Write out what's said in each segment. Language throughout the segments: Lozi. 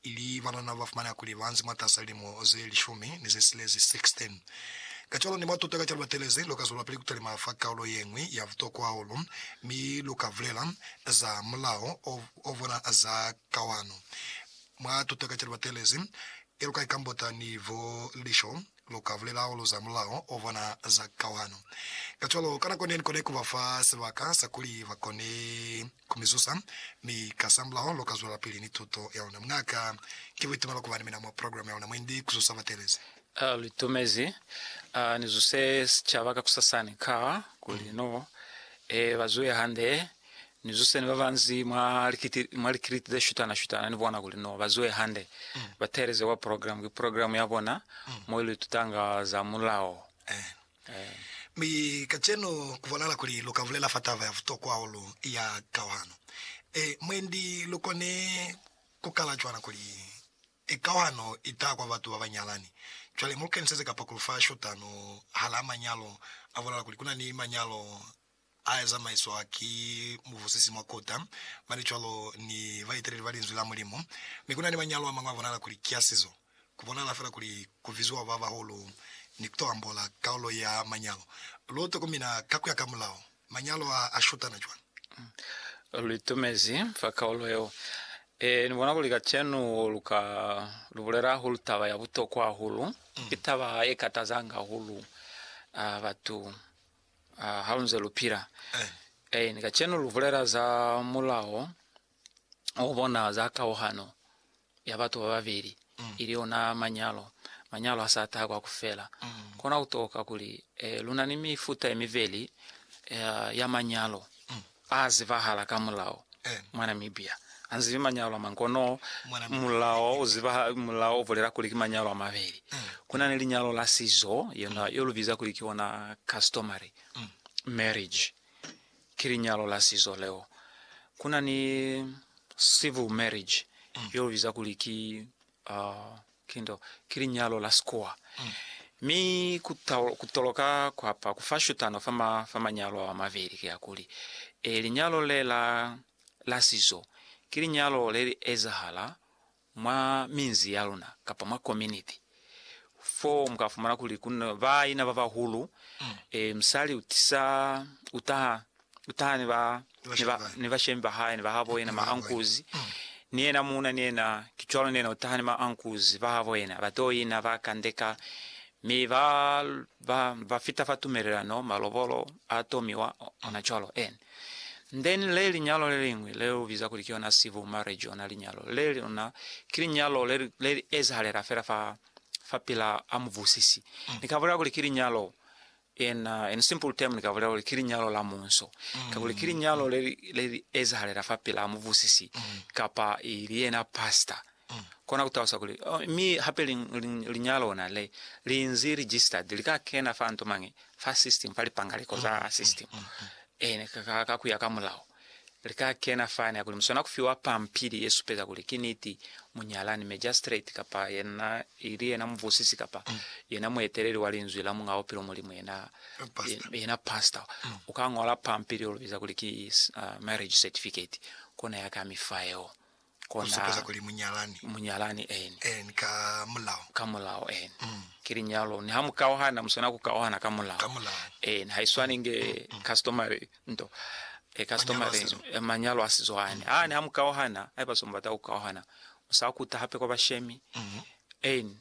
ili banana ba fumaneha kuli ba nzi mwatasa lilimo ze lishumi ni ze silezi, 16. Kacwalo ni mwa tuta ka ca lu batelezi, lu ka zwelapili ku talima fa kaulo ye ñwi ya butokwa hahulu, mi lu ka bulela za mulao o o bona za kawano mwa tuta ka ca lu batelezi, ye lu ka ikambota ni bo lisho, lu ka bulela hahulu za mulao o bona za kauhano. Kacwalo, ka nako ne, ni kone ku ba fa sibaka sa kuli ba kone ku mi zusa, mi kasamulaho lu ka zwelapili ni tuto ya luna. Muña'ka, ki buitumelo ku ba ni mina mwa programe ya luna mwendi ku zusa batelezi. Ha lu itumezi ni zuse sicaba kakusasani, ka kuli no e ba zuhe hande Ni zuse ni babanzi mwa likiti, mwa likiliti ze shutana shutana ni bona kuli no bazuwe hande. Mm. Ba teeleze kwa program, ki program ya bona mm. mo ili tutanga za mulao. Eh. Eh. Mi kacenu kubonala kuli lu ka bulela fa taba ya butokwa hahulu ya kauhano. E, mwendi lu kone kukala cwana kuli e kauhano i taha kwa batu ba ba nyalani. Cwale mu lu keniseze kapakulu fa shutano hala manyalo, a bonala kuli kuna ni manyalo A ya zamaiswa ki mubusisi mwa kota, mane cwalo ni baeteleli ba Linzwi la Mulimu. Mi ku na ni manyalo a mañwi a bonala kuli ki a sizo. Ku bonala fela kuli ku biziwa ba bahulu ni ku to ambola kaulo ya manyalo. Lu tokomina ka ku ya ka mulao manyalo a a shutana cwañi? Lu itumezi fa kaulo yeo. Ee, ni bona kuli kacenu lu ka lu bulela hahulu taba ya butokwa hahulu. Ki taba ye katazanga hahulu batu Ah, ha lu nze lu pila. Eh, ni kacenu lu bulela za mulao o bona za kauhano ya batu ba babeli, ili ona manyalo. Manyalo ha sa taha kwa ku fela. Kona ku toka kuli eh, lu na ni mifuta ye mibeli eh, ya manyalo. A zibahala ka mulao mwa Namibia. Anzi ki manyalo amañi kono mulao uzibahala, mulao ubulela kuli ki manyalo amabeli. Kuna ni linyalo la sizo yona yo lubiza kuli ki ona customary marriage, ki linyalo la sizo leo. Kuna ni civil marriage yo lubiza kuli ki Oh, ki nto, ki linyalo la sikuwa. Mi ku, ku toloka kwa pa, ku fa shutano fa, ma, fa manyalo ao a mabeli, ki hakuli, e, linyalo le la, la sizo, ki linyalo le li ezahala mwa minzi ya luna, kapa mwa kominiti, fo mu ka fumana kuli ku na baina ba bahulu, e, musali u tisa, u taha Kutaha ni ba, ni ba, ni bashemi ba hae, ni ba habo yena, ma ankuzi, ni yena muuna, ni yena, ki cwalo, ni yena kutaha ni ma ankuzi ba habo yena, ba to ina, ba kandeka, mi ba, ba, ba fita fa tumelelano, malobolo a tomiwa, ona cwalo. En. Then le linyalo le liñwi, le lu biza kuli ki yona civil marriage, ona linyalo le lona, ki linyalo le, le li ezahalela fela fa, fa pila a mubusisi. Ni ka bulela kuli ki linyalo. Yena, in simple term, ni ka bulela kuli ki linyalo la munso, kakuli ki linyalo le li, le li ezahalela fa pelaa mubusisi, kapa i li yena pastor. Kona ku talusa kuli, oh, mi hape li, li, linyalo ona le, li nzi registered, li ka kena fa nto mañi, fa system, fa lipangaliko za system, ene, ka, ka, ka kuya ka mulao. Li ka kena fani hakuli muswana ku fiwa pampili ye supeza kuli ki niti munyalani, magistrate, kapa yena ili yena mubusisi kapa yena mueteleli wa Linzwi la Muñ'a Bupilo, Mulimu yena, yena pastor, u ka ñola pampili yo lu biza kuli ki marriage certificate, kona ya ka mi fa yeo. Ku supeza kuli munyalani. Munyalani, eeni. Eeni, ka mulao. Ka mulao, eeni. Ki linyalo. Niha mu kauhana, mu swana ku kauhana ka mulao. Ka mulao. Eeni, ha i swani nge customary nto. E, customary nto. Manyalo a sizo ani. Ha niha mu kauhana, haiba se mu bata ku kauhana, mu sa kuta hape kwa bashemi. Eeni.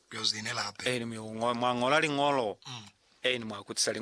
Ku yo zinela hape. Eeni, mwa ñola liñolo. Eeni, mwa kutisa liñolo.